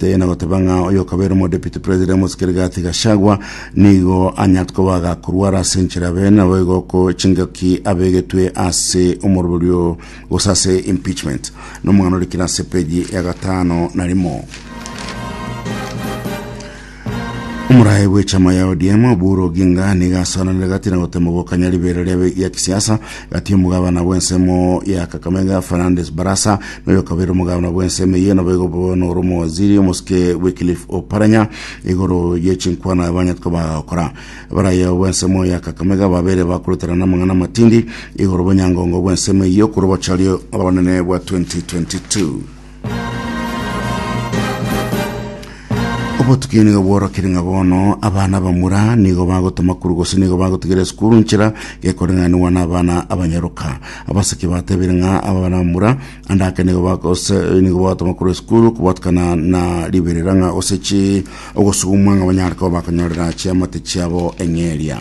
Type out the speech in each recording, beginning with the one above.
Tei nagoteba ng'a oyokabeire omodepute president omosike Rigathi Gachagua nigo anyarete koba agakorwara ase enchera abe nabo igo ko chingaki abegetwe ase omoroberio gose ase impeachment nomong'ano orikire ase peji ya gatano na rimo Omurae bw'echama ya ODM Oburu Oginga niga asoranire gati na gotema gokanya ribeera ria kisiasa Gati omogabana bw'ensemo ya Kakamega Fernandes Barasa noyokabeire omogabana bw'ensemo eye nabo igo bo noro omowaziri omosike Wycliffe Oparanya igoro ye chinkwana abanyetwe bagakora. Barayo bw'ensemo ya Kakamega babere bakorutana n'amang'ana amatindi igoro bw'enyangongo bw'ensemo eye okorobochario obonene bwa 2022. obotuki nigo bworokire ng'a bono abana abamura nigo bagotoma kuru gose nigo bagotigera esukuru nchera gekoreng'aniwa na abana abanyaroka abaseki batebire ng'a abana bamura andake nigo bagose nigo bagatoma kuru esukuru kobatukana na riberera ng'a gose chi ogosugumwa ng'a banyare koba bakonyorera chiamate chiabo eng'eria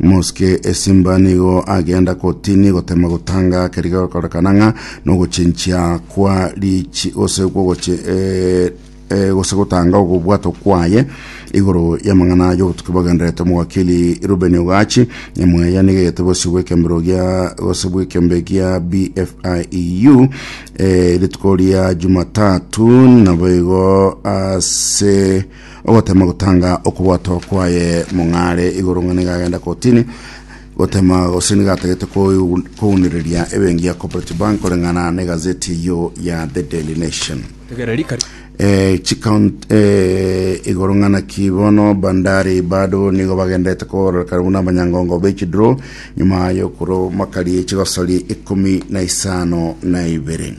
Mosike esimba nigo agenda kotini gotema gotanga keriga gokorekana ng'a nogochinchia kwa richi gose kwogochi eh, eh, gose gotanga ogobwato kwaye igoro y'amang'ana y'obotuki bogenderete omogakiri Ruben Ogachi nyamweya nigegete bosi bw'ekembero gia gose bw'ekembe gia BFIEU eh, rituko ria Jumatatu nabo igo ase Ogotema gotanga okobwato kwaye mong'are igoro ng'a nigo agenda kotini gotema gose nigo atagete kounereria ebengi ya Cooperative Bank koreng'ana na egazeti eyio ya The Daily Nation. Tegera rikari. Eh, chikaunt eh, igoro ng'ana ki bono bandari bado nigo bagendete kororekana buna abanyangongo bechidro nyuma yokuro makari chigosori ikumi na isano na ibere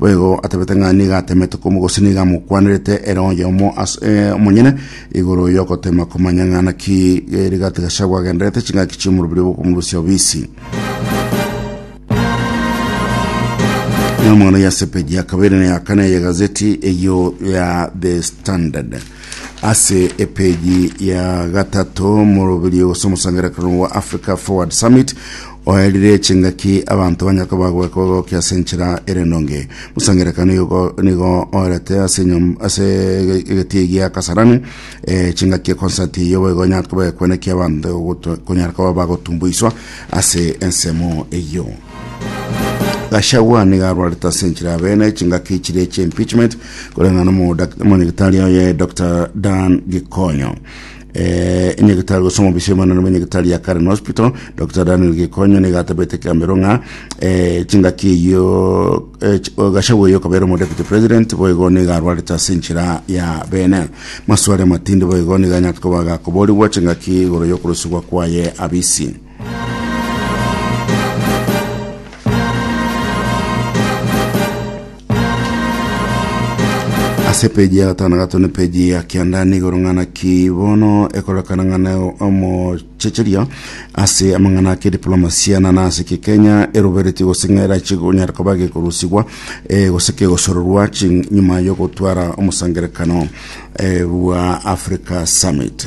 Boigo atabete ng'a nigo atemete komo gose nigo amokwanerete ere oyomo ase eh, omonyene igoro yogotema komanya ng'a naki eh, rigati gashabu agenderete ching'aki chi'omorobiri bokomorusia obisi. Ino mono ya sepeji ya kabere na ya kane ya gazeti eyo ya The Standard ase epeji ya gatato morobiri gose omosangererekano wa Africa Forward Summit Oererie chingaki abanto banye kobagoeka ogoke ase enchera ere ndonge. Musa ngerekano igo nigo oerete ase enyom- ase egetie egia Kasarani eh, chingaki ekonsati eyio boigo onyare kobekwa naki abanto goto- konyara koba bagotumboiswa ase ensemo eyio. Gachagua nigo arwarete ase enchera ya bene chingaki chiria chia impeachment koreng'ana na omodak- omonyagetari oye Dr Dan Gikonyo. Eh, inyagetari gose omobisi omanene bwa inyagetari ya Karen Hospital Dr. Daniel Gikonyo niga atabete ekiambero ng'a eh, chingaki eyio eh, ch- o Gachagua oyo okabera omo deputy president boigo niga arwarete ase enchera ya bene maswali amatindi boigo niga anyare koba gakoborigwa chingaki igoro yokorosibwa kwaye abisi ase epeji ya gatano gato na epeji ya kianda nigoro ng'ana ki bono ekorekana ng'ana omochecheria ase amang'ana ake diplomasia nana ase ki kenya eroberetie gose ng'era chigonyara koba gekorusigwa eh, gose kegosororwa chi- nyuma yogotwara omosangerekano eh, bwa africa summit